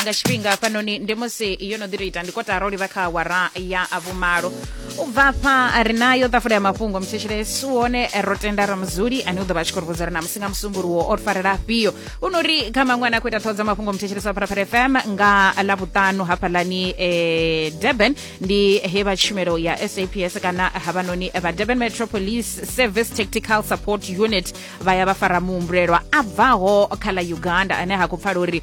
nga tshifhinga hafhanoni ndi musi yo no ḓi to ita ndi kotara u livha kha awara ya vhumalo u bva afha ri nayo ṱafula ya mafhungo mutshetshelesi u hone ro tenda ramuzuli ane u ḓo vha a tshi khou ri vhudza uri na musi nga musumbuluwo o ri farela afhio u no ri kha maṅwe ane a khou ita ṱhoho dza mafhungo mutshetshelesi wa pharapara fm nga ḽa vhuṱanu hafhaḽani eh, durban ndi he vha tshumelo ya saps kana havhanoni vha durban metro police service tactical support unit vha ya vha fara muhumbulelwa a bvaho kha ḽa uganda ane ha khou pfala uri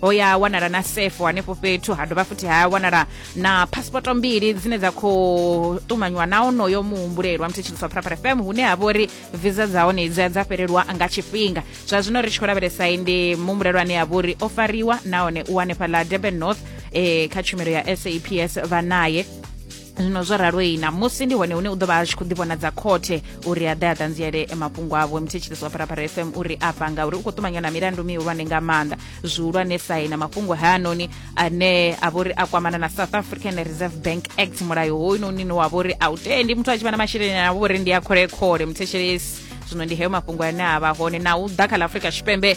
ho ya wanala na sefo hanefho fhethu ha dovha futhi ha wanala na phasipoto mbili dzine dza khou ṱumanywa na onoyo muhumbulelwa mthetshiliswa phuraphura fm hune ha vha uri visa dza hone dzi a dza fhelelwa nga tshifhinga zwa zwino ri tshi khou lavhelesa ndi muhumbulelwa ane a vha uri o fariwa nahone u hanefha ḽa durban north eh, kha tshumelo ya saps vha naye zwino zwo raloyi na musi ndi hone hune u ḓo vha a tshi khou ḓivhonadza khothe uri a ḓe a ṱanziele mafhungo avho mthetshelesi wa pharapara fm uri afha ngauri u khou ṱumanywa na milandu mihulwane nga maanḓa zwihulwane sai na mafhungo hayanoni ane a vha uri a kwamana na south african reserve bank act mulayo hoyunoni ne wa vha uri a u tendi muthu a tshi vha na masheleni a vha uri ndi a kholekhole mthetshelesi zwino ndi heyo mafhungo ane a vha hone na u ḓa kha ḽa afrika tshipembe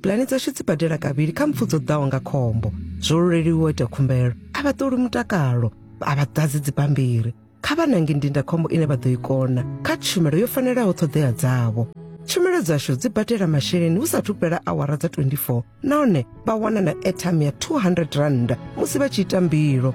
pulani dzashu dzi badela kavhili kha mpfu dzo ḓaho nga khombo zwo luleliwa ita khumbelo a vha ṱoli mutakalo a vha ḓadzi dzibammbiri kha vha nange ndindakhombo ine vha ḓo i kona kha tshumelo yo fanelaho ṱhoḓea dzavho tshumelo dzashu dzi badela masheleni hu sathu fhela awara dza 24 nahone vha wana na airtime ya 200 rand musi vha tshi ita mbilo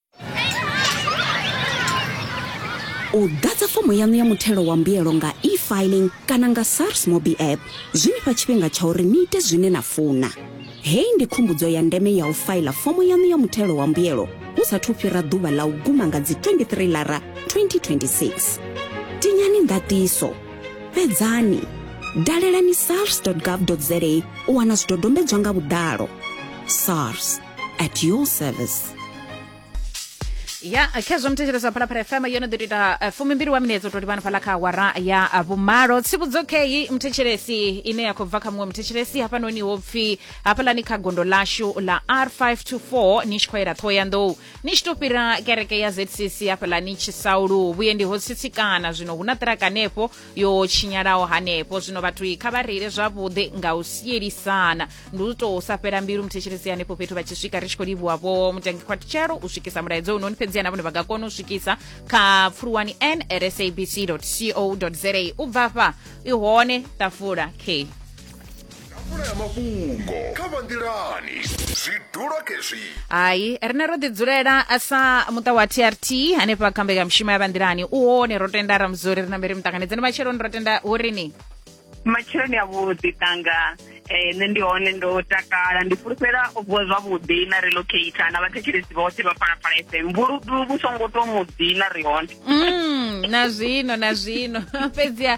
u ḓadza fomo yaṋu ya muthelo wa mbuyelo nga e-filing kana nga sars mobi app zwi nifha tshifhinga tsha uri ni ite zwine na funa hei ndi khumbudzo ya ndeme ya u faila fomo yaṋu ya muthelo wa mbuyelo hu sathu fhira ḓuvha ḽa u guma nga dzi 23 lara 2026 tinyani ndatiso fhedzani dalelani sars gov za u wana zwidodombedzwa nga vhuḓalo sars at your service ya khezwo muthetshelesa phalaphala fm yo no ḓo ita eh, fumimbili wa minetse u to livhana fhala kha awara ya eh, vhumalo tsivhudzo kheyi muthetshelesi ine ya khou bva kha muṅwe muthetshelesi hafhanoni ho pfi hafhalani kha gondo lashu la r524 ni tshi khou yela ṱhohoyanḓou ni tshi to fhira kereke ya zcc hafhalani tshisaulu vhuendi ho tsitsikana zwino hu na ṱiraka hanefho yo tshinyalaho hanefho zwino vhathu i kha vha reile zwavhuḓi nga u sielisana ndi u tou sa fhela mbilu muthetshelesi hanefho fhethu vha tshi swika ri tshi khou livhuwa vho mutangi khwathutshelo u swikisa mulaedza unoni fhedzi na vhone vha nga kona u swikisa kha pfuluwani n rsabc co za u bva fha i hone ṱafula k ḓafula ya mafhungo kha vha nḓilani zwi dula khezwi hai rine ro ḓidzulela sa muṱa wa trt hanefha kha mbekanyamushumo ya vhanḓilani u hone ro tenda ramuzori ri na mberi muṱanganedzeni matsheloni ro tenda hu rini matsheloni a vhuḓi tanga eh, nṋe ndi hone ndo takala ndi fulufhela o vuwa zwavhuḓi na relocata na vhathetshelesi vhoṱhe vha phalaphala fm vhuludu vhu songo to muḓi na ri hone mm, na zwino na zwino fhedziha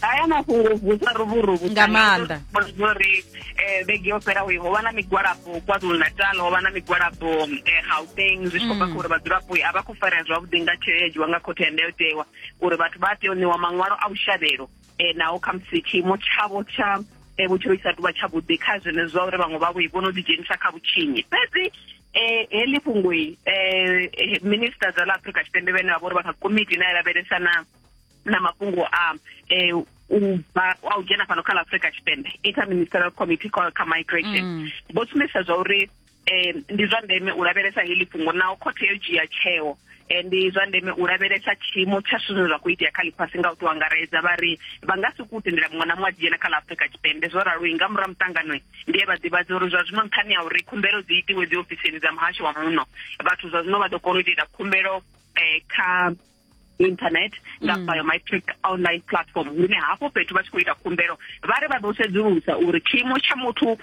haya mafhungo vusa ruvuruvu nga maanḓa uri eh, vhege yo fhela ho vha na migwalabo kwazulu natal ho vha na migwalabo eh, gauteng zwi tshi khou bva mm. kha uri vhadzulapo a vha khou farea zwavhuḓi nga tsheo ya dzhiwa nga khothe ya ndayotewa uri vhathu vha tea u ṋewa maṅwalo a vhushavhelo um naho khamusi tshiimo tshavho tsha um vhutshilo isa tuvha tshavhuḓi kha zwenezwi zwa uri vhaṅwe vhavho vho no ḓidzhenisa kha vhutshinyi fhedzi eh heḽi fhungo eh minister dza ḽa Afrika Tshipembe vhene vha vha uri vha kha komiti ine ya lavhelesana na mafhungo a eh, u bva a u dzhena fhano kha la afrika tshipembe interministerial committee call kha migration mm. vho sumbedzisa zwa uri eh, ndi zwa ndeme u lavhelesa heḽi fhungo naho khothe yo dzhia tsheo eh, ndi zwa ndeme u lavhelesa tshiimo tsha zwithu zwine zwa khou itea kha ḽifhasi nga u tou angaredza vha ri vha nga si ku tendela muṅwe na muṅwe a dzhena kha ḽa afrika tshipembe zwo ralo nga murahu muṱanganoi ndi ye vha ḓivhadze uri zwa zwino nṱhani ya uri khumbelo dzi itiwe dzi ofisini dza muhasho wa muno vhathu zwa zwino vha ḓo kona u itela khumbelo um kha internet nga mm. biometric online platform hune hafho fhethu vha tshi khou ita khumbelo vha ri vha ḓo sedzulusa uri tshiimo tsha muthu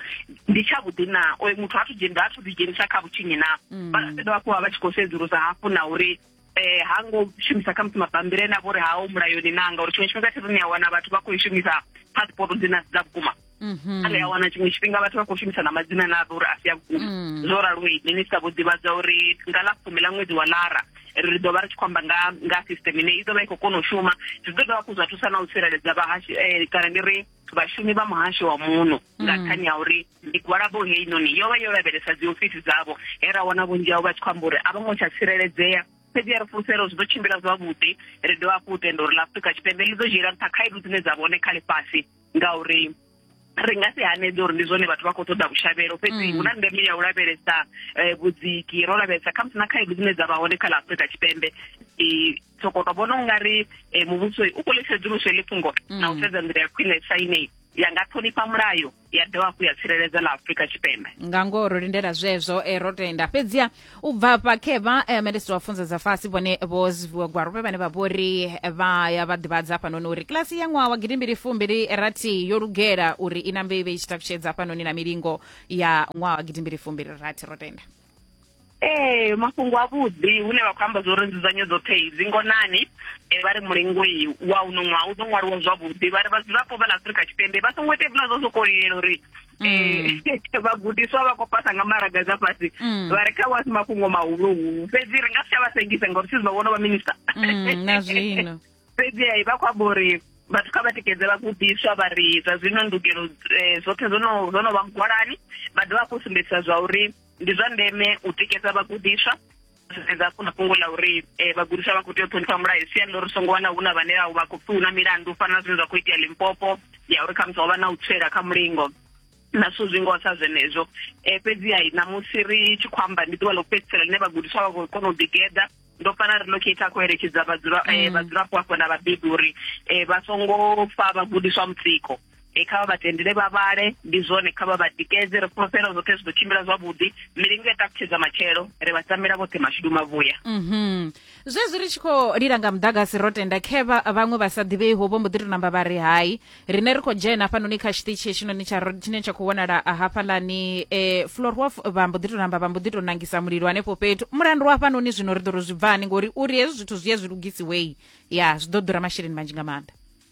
ndi tsha vhuḓi na oyo muthu athu dzhenisa athu ḓi dzhenisa kha vhutshinyi na mm. vha fhedza vha kuwa vha tshi khou sedzulusa hafhu na uri eh ha ngo shumisa kha musi mabambiri ene a vhori ha o mulayoni nanga uri tshiṅwe tshifhinga thiruni ya wana vhathu vha khou i shumisa passport dzine dza vhukuma mhm. ri a wana tshiṅwe tshifhinga vhathu vha khou shumisa na madzina na uri a si a vhukuma mm. zwo raloi minista vho ḓivhadza uri nga ḽa fumi ḽa ṅwedzi wa lara ri ḓo vha ri tshi khou amba nga nga system ine i ḓo vha i khou kona u shuma zwi ḓo dovha hafhu zwa thusa na u tsireledza vhahashi eh, kana ndi ri vhashumi vha muhasho wa muno nga mm. nṱhani ya uri migwalabo heinoni yo vha yo lavhelesa dzi ofisi dzavho he ra wana vhunzhi hao vha tshi khou amba uri a vho ngo tsha tsireledzea fhedzi ya ri fulufhelo zwi ḓo tshimbila zwavhuḓi ri dovha hafhu u tenda uri la afrika tshipembe ḽi ḓo dzhiela nṱha khaedu dzine dza vhone kha ḽifhasi ngauri ri nga si hanedze uri ndi zwone vhathu vha khou ṱoḓa vhushavhelo fhedzi mm. hu na ndeme ya u lavhelesa eh, vhudziki ro lavhelesa khamusi na khaedu dzine dza vha hone kha ḽa afurika tshipembe soko to vhona ungari eh, muvhuso u khou ḽisedzuluso ḽi fhungo mm. na u sedza nḓila ya khwine saine ya nga ṱhonifha mulayo ya dovha hafhu ya tsireledza ḽa afurika tshipembe nga ngoho ro lindela zwezwo eh, ro tenda fhedziha u bva hafha khevha eh, minisiṱa wa funza dza fhasi vhone vho zwiviwa gwarope vhane vha vho ri eh, vha ya vha ḓivhadza hafhanoni uri kilasi ya ṅwaha wa gidimbili fumbili rathi yo lugela uri i nambe i vhe i tshi takutshedza hafhanoni na milingo ya ṅwaha wa gidimbili fumbili rathi ro tenda ee mafhungo avhuḓi hune vha khou amba zwa uri nzudzanyo dzoṱhe dzi ngonani um vha ri mulengoi wa uno ṅwaha u ḓo ṅwaliwa zwavhuḓi vha ri vhadzulapo vha ḽa afurika tshipembe vha songo ita hezwiḽa zwa sokou lilela uri mm. eh, vhagudiswa vha khou pasa nga maraga dza fhasi mm. vha ri kha wasi mafhungo mahuluhulu fhedzi ri nga si tsha vha sengisa ngori sisi vha vhono vha minista mm, na zwino fhedzi ai vha khou amba uri vhathu kha vha tikedze vhagudiswa vha ri zwa zwino ndugelo eh, zwoṱhe zwo no vha mugwalani vha dovha hafhu sumbedzisa zwa uri ndi zwa ndeme u tikedza vhagudiswa sedza hafhu na fhungo ḽa uri um vhagudiswa vha khou tea u ṱhonifha mulayo siani ḽo ri songo wana hu na vhane vha khou pfi hu na milandu fana na zwine zwa khou itea limpopo ya uri khamusi ho vha na u tswela kha mulingo na zwithu zwi ngoho sa zwenezwo um fhedziha ṋamusi ri tshi khou amba ndi ḓuvha ḽo fhedzisela ḽine vhagudiswa vha khou kona u ḓigeḓa ndo fana ri locate a khou eletshedza mm. vhadzulapo hafho na vhabebi uri um vha songo fa vhagudiswa mutsiko e kha vha vha tendele vha vhale ndi zwone kha vha vha tikedze ri fhulufhela zwoṱhe zwi ḓo tshimbila zwavhuḓi milingo ya takutshedza matshelo ri vha tambela vhoṱhe mashudu mavhuya mhm zwezwi ri tshi khou lila nga muḓagasi ro tenda khevha vhaṅwe vha sa ḓivhei ho vho mbo ḓi to namba vha ri hai rine ri khou dzhena hafhanoni kha tshiṱitshi hetshinoni tsha tshine tsha khou wanala hafhalani e florhof vha mbo ḓi to namba vha mbo ḓi to nangisa mulilo hanefho fhethu mulandu wa hafhanoni zwino ri ḓo ro zwi bvani ngori uri hezwi zwithu zwi ye zwi lugisiwei ya zwi ḓo ḓura masheleni manzhi nga maanḓa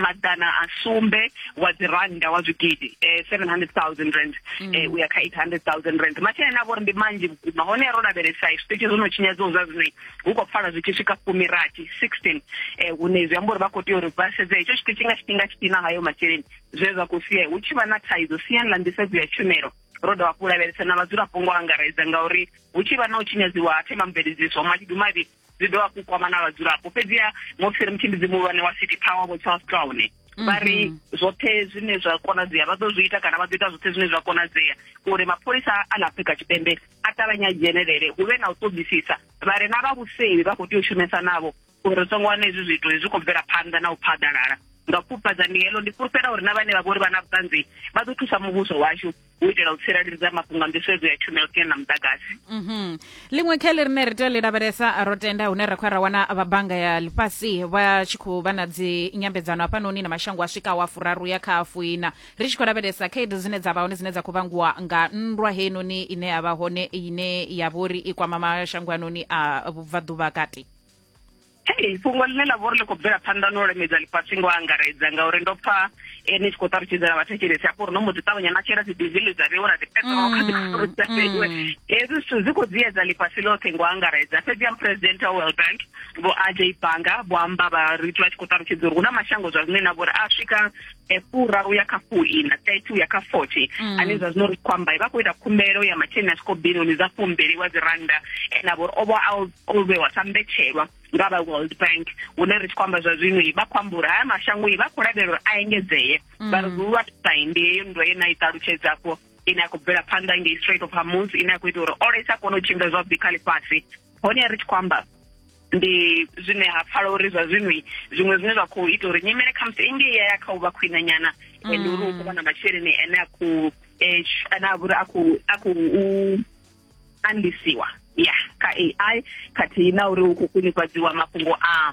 maḓana a sumbe wa dzi rannda wa zwigidi eh 700000 rand mm. eh uya kha 800000 rand masheleni avho ri ndi manzhi vhukuma hone ro lavhelesa zwiṱitshi zwo no tshinyadza zwa zwino hu khou pfala zwi tshi swika fumi rathi 16 eh hune zwi amba uri vha khou tea uri vha sedze hetsho tshiṱitshi nga tshifhinga tshithihi na hayo masheleni zwe zwa khou sia hu tshi vha na thaidzo siyani ḽa nḓisedzo ya tshumelo ro dovha hafhu lavhelesa na vhadzulapo ngo angaredza ngauri hu tshi vha na u tshinyadziwa ha themamveledziso mashidu mavhi zwi dovha hafhu kwama na vhadzulapo fhedziha musi ri mutshimbidzi muhulwane wa city power vho charles clown vha ri mhm. zwoṱhe zwine zwa konadzea vha ḓo zwi ita kana vha ḓo ita zwoṱhe zwine zwa konadzea uri mapholisa a na afrika tshipembe a ṱavhanye a dzhenelele hu vhe na u ṱoḓisisa vha re na vha vhusevhi vha khou tea u shumesa navho uri ri songo wana hezwi zwithu zwi khou bvela phanḓa na u phaḓalala nga pfufhadza ndi helo ndi fhulufhela uri na vhane vha vhori vha na vhuṱanzi vha ḓo thusa muvhuso washu u itela u tsireledza mafhungo a nḓisedzo ya tshumelo kene na muḓagasi mhm. ḽiṅwe kha ḽi rine ri tea ḽi lavhelesa ro tenda hune ra khou ya ra wana vha bannga ya ḽifhasi vha tshi khou vha na dzi nyambedzano hafhanoni na mashango a swikaho a furaru ya kha afuina ri tshi khou lavhelesa khaedu dzine dza vha hone dzine dza khou vhangiwa nga nndwa heinoni ine ya vha hone ine ya vha uri i kwama mashango anoni a vhubvaḓuvha kati hei fhungo ḽine ḽa vha uri ḽi khou bvela phanḓa no lemedza ḽifhasi ngo angaredza ngauri ndo pfa eh, ni tshi khou ṱalutshedzela vhathetshelesi hafho uri no mbo ḓi ṱavhanya na shela dzidizili dza vheiwa na dzipetrol kha dzifuru dza fheiwe hezwi zwithu zwi khou dziyedza ḽifhasi ḽoṱhe ngo angaredza fhedzi ya muphuresidenthe wa world bank vho aj banga vho amba vha ri vha tshi khou ṱalutshedza uri hu na mashango zwa zwine na vhori a swika fura uya kha fuina thirty uya kha forty mm. ane zwa zwino ri khou amba vha khou ita khumbelo ya masheleni a swiko bilioni dza fumbili wa dzi randa ene avho uri o vha o vhewa sa mbetshelwa nga vha world bank hune ri tshi khou amba zwa zwino vha khou amba uri haya mashango vha khou lavhelela uri a engedzee mm. vha ri lwa sai ndi heyo ndo ye na i ṱalutshedza afho ine ya khou bvela phanḓa ngei straight of hamus ine ya khou ita uri ola i sa kone u tshimbila zwavhuḓi kha ḽifhasi hone ri tshi khou amba ndi zwine ha pfala uri zwa zwino zwiṅwe zwine zwa khou ita uri nyimele khamusi engei ya ya kha u vha khwine nyana mm. and uri u khou vha na masheleni ane a khou eh, ane a vhuri a khou u andisiwa ya kha ai khathihi na uri hu khou khwinifhadziwa mafhungo a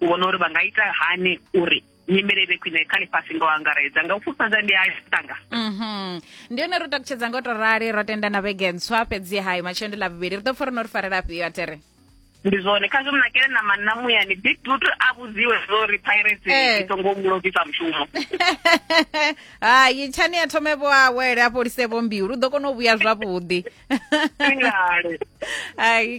u vhona uri vha nga ita hani uri nyimele vhe khwine kha ḽifhasi ngo angaredza nga u fhufhadza ndi a tanga mhm. ndi yone ro takutshedza ngo to rali ro tenda na vhege ntswa fhedzi hai matshelo ndi ḽa vhuvhili ri ḓo pfa ri no ri farela afhio atere ndi zwone kha zwo mnakele na manna muyani big dut a vhudziwe zwo ri pirates eh. i songo mu lovisa mushumo hai tshani ya thome vho awele a fholise vho mbilu u ḓo kona u vhuya zwavhuḓi hai